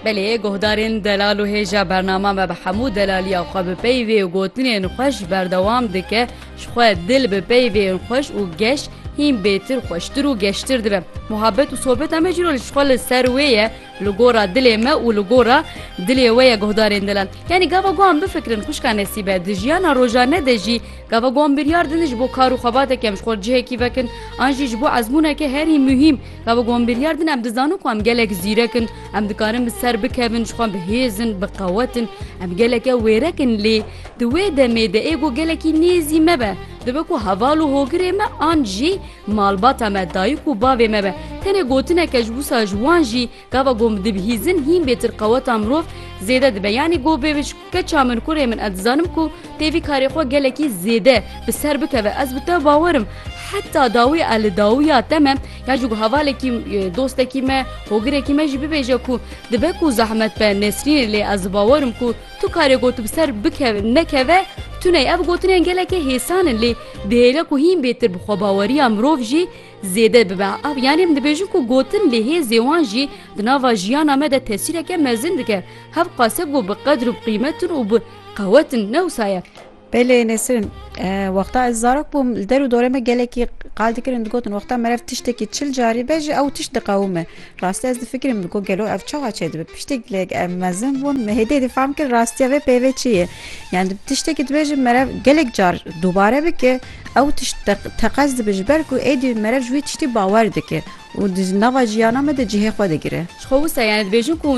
Belê guhdarên delal û hêja bernama me bi hemû delaliya xwe bi peyvê û gotinên xwe ji berdewam dike, ji xwe dil bi peyvên xweş û geş hîn bêtir xweştir û geştir dibe. Muhabet û sobeta me cîro ji xwe li ser wê ye li gora dilê me û li gora dilê we ye guhdarên delal. Yanî gava guhan bifikirin xwişka Nesîbe di jiyana rojane de jî gava guhan biryar didin ji bo kar û xebateke em ji xwe li cihekî vekin an jî ji bo ezmûneke herî muhîm, Gava ku em biryar din em dizanin ku em gelek zîrek in, em dikarin bi ser bikevin, ji xwe bihêz in, biqewet in, em geleke wêrek in lê di wê demê de êgo gelekî nêzî me be. Dibe ku heval û hogirê me an jî malbata me, dayik û bavê me be. Tenê gotineke ji wisa ji wan jî gava ku em dibihîzin hîn bêtir qeweta mirov zêde dibe. Yanî ku bê Keça min kurê min ez dizanim ku tê vî karê xwe gelekî zêde bi ser bikeve ez bi te bawerim heta dawî e li dawiya te me ya jî ku hevalekî dostekî me hogirekî me jî bibêje ku dibe ku zehmet be nesrînê lê ez bawerim ku tu karê got bi ser bikeve nekeve tuney ev gotinên gelekê hêsan in lê dihêle ku hîn bêtir bi xwebaweriya mirov jî Zêde bibe ev yanî em dibêjin ku gotin lê hêzê wan jî di nava jiyana me de tesîreke mezin dike. Hev qase ku bi qedir û bi qîmet in û bi qewet in ne wisa ye. Belê Nesrin, Wexta ez zarok bûm li der û dorê me gelekî qal dikirin digotin wexta merev tiştekî çil carî be jî ew tişt diqewime. Rastî ez difikirim digo gelo ev çawa çêdibe. Piştî lek em mezin bûn me hêdî difam kir rastiya vê peyvê çi ye. Yan tiştekî dibêjin merev gelek car dubare bike Ew tişt teqez dibe ji ber ku êdî mere ji wî tiştî bawer dike û di nava jiyana me de cihê xwe digire. Ji xwe wisa yanî dibêjin ku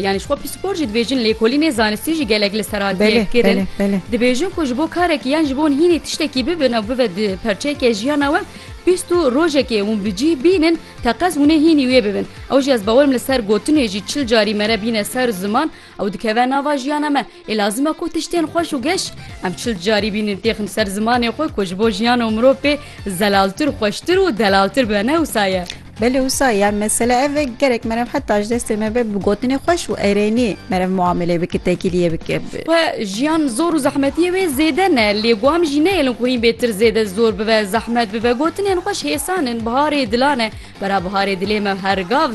yanî ji xwe pîspor jî dibêjin lêkolînê zanistî jî gelek li ser hatiye kirin. Dibêjin ku ji bo karekî yan ji bo hînî tiştekî bibin ew bibe di perçeyeke jiyana we pîst û rojekê hûn bi cih bînin teqez hûnê hînî wê bibin. Ew jî ez bawerim li ser gotinê jî çil carî mere bîne ser ziman Ew dikeve nava jiyana me. Ê lazim e ku tiştên xweş û geş em çil carî bînin têxin ser zimanê xwe ku ji bo jiyan û mirov pê zelaltir, xweştir û delaltir be ne wisa ye. Belê wisa ye, mesele ev e gerek meriv heta ji destê me be bi gotinê xweş û erênî meriv muamelê bike, tekîliyê bike. Xwe jiyan zor û zehmetiyê wê zêde ne lê ku em jî neyêlin ku hîn bê tir zêde zor bibe, zehmet bibe. Gotinên xweş hêsan in, biharê dilan e. Bera biharê dilê me her gav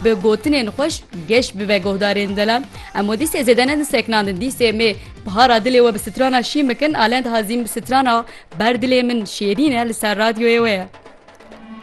bi gotinên xweş geş bibe guhdarên dila. Em we dîsê zêde ne diseknandin dîsê mê bihara dilê we bi strana şîn bikin a lend hazîn bi strana ber dilê min şêrîn e li ser radyoyê we ye.